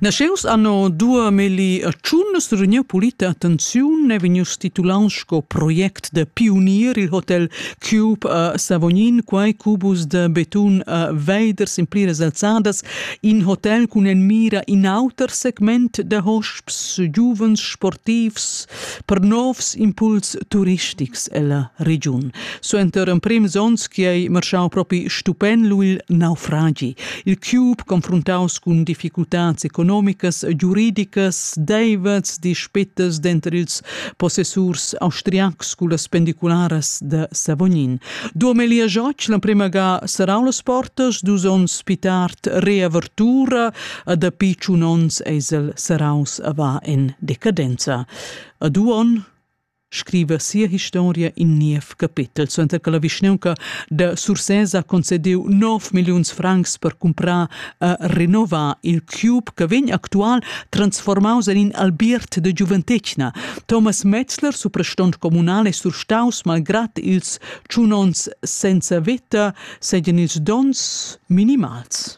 Nasceus anno 2001 rugniu pulita attenziun e vegnius titulants sco project da pionier il hotel Cube a Savognin, quai cubus da betun a Veiders in pliras alzadas, in hotel cun en mira in auter segment da hosps, giuvens, sportivs, per novs impuls turistics ella regiun. Suenter emprims onns che ei marschau propi stupen lu il naufragi. Il Cube, confrontaus cun difficultads economicas, giuridicas, deivets, dispettas denter ils possessurs austriacs cullas pendicularas de Savognin. Duomelia Joc, l'emprema ga serau las portas, dus onns pi tard reavertura, a dapi tschun onns eisel seraus a va en decadenza. A du on scriva sia historia in niev capetel, suenter che la vischneunca da Sursès ha concediu 9 milliuns francs per comprar a renovar il cube che vegn actual transformaus en in albiert de giuventetgna. Thomas Metzler, suprastont comunale surstaus, malgrat ils tschunons senza veta, seien ils dons minimals.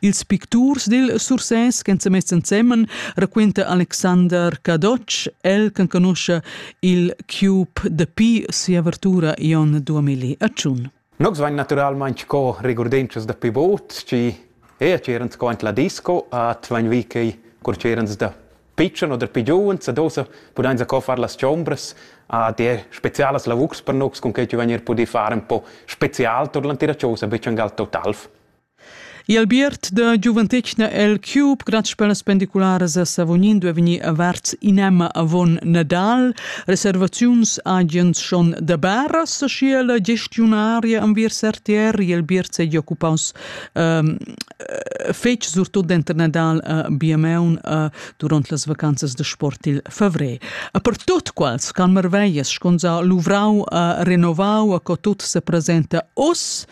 Ils picturs dil Sursès ch'en semess ensemen raquenta Alexander Cadotsch, el canconuscha il Cube dapi sia avertura Ion 2000 a Tschun. Nogs vain naturalmaing co regurdenschas da pivot, chi e c'erans co ant la disco at vain vi che cur c'erans da pitschen oder pigiuns, ad osa pudain sa co far las chombras a der spezialas lavurs per nogs con che ci vain er pudì far un po spezial tur l'antira chosa, be changal totalf. I Albiert da giuventetgna el Cube grazs per las pendicularas a Savognin duai vegnir averts in'emma avon Nadal. Reservaziuns agens schon da Baras, sche la gestiunaria enviers RTR il Albiert seigi occupaus ehm, eh, fetg surtut denter Nadal a Biameun eh, duront las vacanzas de sport il favrer. A per tut quals can marveias sconza luvrau a renovau a co tut se presenta os,